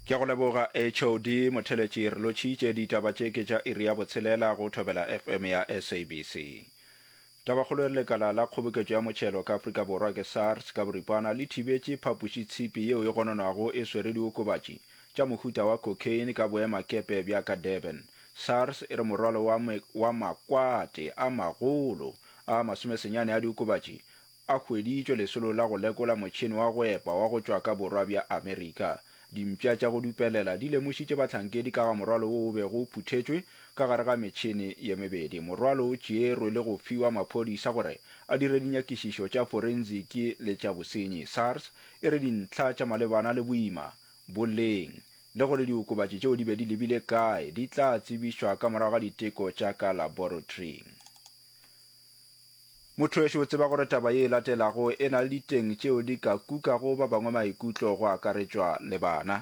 Ke a go leboga HOD Motheletši. Re lotšhitše ditaba tše ke tša iri ya botshelela go Thobela FM ya SABC. Tabakgolo e re lekala la kgoboketšo ya motšhelo ka Afrika Borwa ke SARS ka boripana le thibetše phapošitshipi yeo e gononwago e swere diokobatši tša mohuta wa cocaine ka boemakepe bja ka Durban. SARS e re morwalo wa wa makwate a magolo a masomesenyane a diokobatši A hweditšwe lesolo la go lekola motšhene wa go epa wa go tšwa ka Borwa bja Amerika. Dimpša tša go dupelela di lemošitše bahlankedi ka ga morwalo wo o bego o phuthetšwe ka gare ga metšhene ye mebedi. Morwalo o tšeerwe le go fiwa maphodisa gore a dire dinyakišišo tša forensic le tša bosenyi. SARS e re dintlha tša malebana le boima, boleng le gore diokobatši tšeo di be di lebile kae di tla tsebišwa ka morago ga diteko tša ka laboratoring. Mothwešo o tseba gore taba ye e latelago e na le diteng tšeo di ka kukago ba bangwe maikutlo go akaretšwa le bana.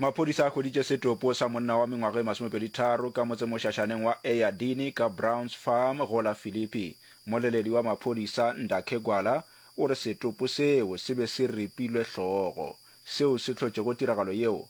Maphodisa a hweditše setopo sa monna wa mengwaga e masomepedi tharo ka motsemošašaneng wa Eyadini ka Browns Farm go la Philippi. Moleledi wa maphodisa Ndakhe Gwala o re setopo seo se be se ripilwe hlogo. Seo se hlotšego tiragalo yeo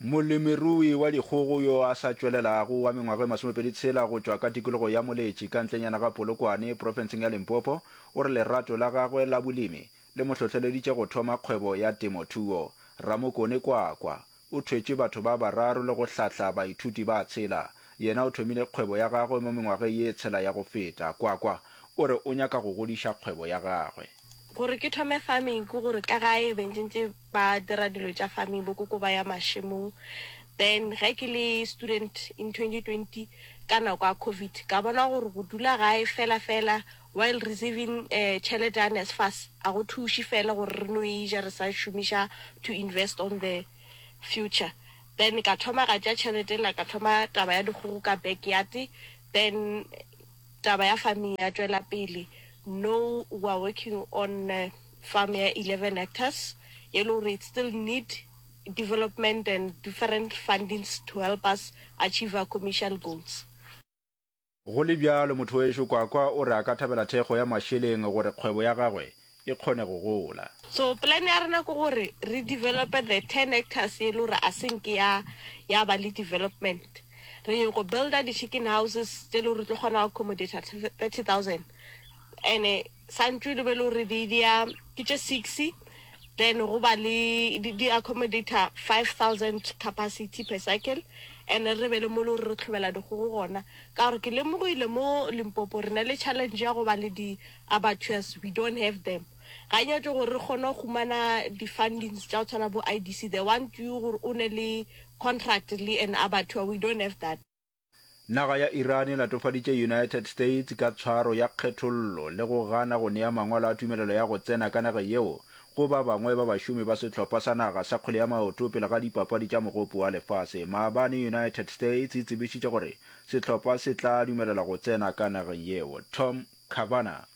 Molemirui wa dikgogo yo a sa tšwelelago wa mengwaga e masomepedi tshela go tšwa ka tikologo ya Moletši ka ntlenyana ga Polokwane profenseng ya Limpopo o re lerato la gagwe la bolemi le mo hlohleleditše go thoma kgwebo ya temothuo. Ramokone Kwakwa o thwetše batho ba bararo le go hlahla baithuti ba tshela. Yena o thomile kgwebo ya gagwe mo mengwageng ye tshela ya go feta. Kwakwa o re o nyaka go godiša kgwebo ya gagwe. Gore ke thome farming ke gore ka gae be ntse ntse ba dira dilo tša farming bo koko ba ya mašemong then ge ke le student in 2020 ka nako ya covid ka bona gore go dula gae fela fela while receiving eh, tšhelete ya NSFAS a go thuši fela gore re no e ja re sa šomiša to invest on the future then ka thoma ka tša tšhelete la ka thoma taba ya dikgogo ka backyard then taba ya farming ya tšwela pele no we are working on eh, farm ya 11 hectares e le gore it still need development and different fundings to help us achieve our commercial goals. Go le bjalo, Mothowešu Kwakwa o re a ka thabela thekgo ya mašeleng gore kgwebo ya gagwe e kgone go gola. So plan ya rena ke gore re develope the 10 hectares e le gore a se nke ya ya ba le development. Re nyoko builder di chicken houses tse e le gore re tlo kgona go accomodate 30000 and Santšwe le be le gore di dia ke tše six then go ba le di, di accommodator 5000 capacity per cycle and re be le mo le gore re tlhobela dikgogo gona ka gore ke lemogile mo limpopo re na le challenge ya go ba le di abattoirs we don't have them ga nyatso gore re kgone go humana di-fundings tša go tshwana bo idc they want you gore o ne le contract le an abattoir we don't have that Naga ya Iran e latofaditše United States ka tshwaro ya kgethollo le go gana go nea mangwalo a tumelelo ya go tsena ka nage yeo go ba bangwe ba bašomi ba sehlopha sa naga sa kgwele ya maoto pele ga dipapadi tša mogopo wa lefase. Maabane United States e tsebišitše gore sehlopha se tla dumelelwa go tsena ka nageng yeo. Tom Cavanagh.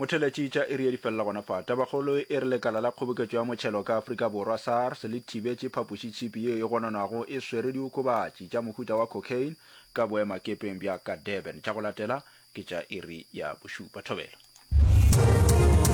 Motheletšitša iri ye di felela gona fa. Tabakgolo e re lekala la kgoboketšo ya motšhelo ka Afrika Borwa, SARS, le thibetše phapošitšhipi yeo e gononwago e swere diokobatši tša mohuta wa cocaine ka boemakepeng bja ka Durban. Tša go latela ke tša iri ya bošupa. Thobela.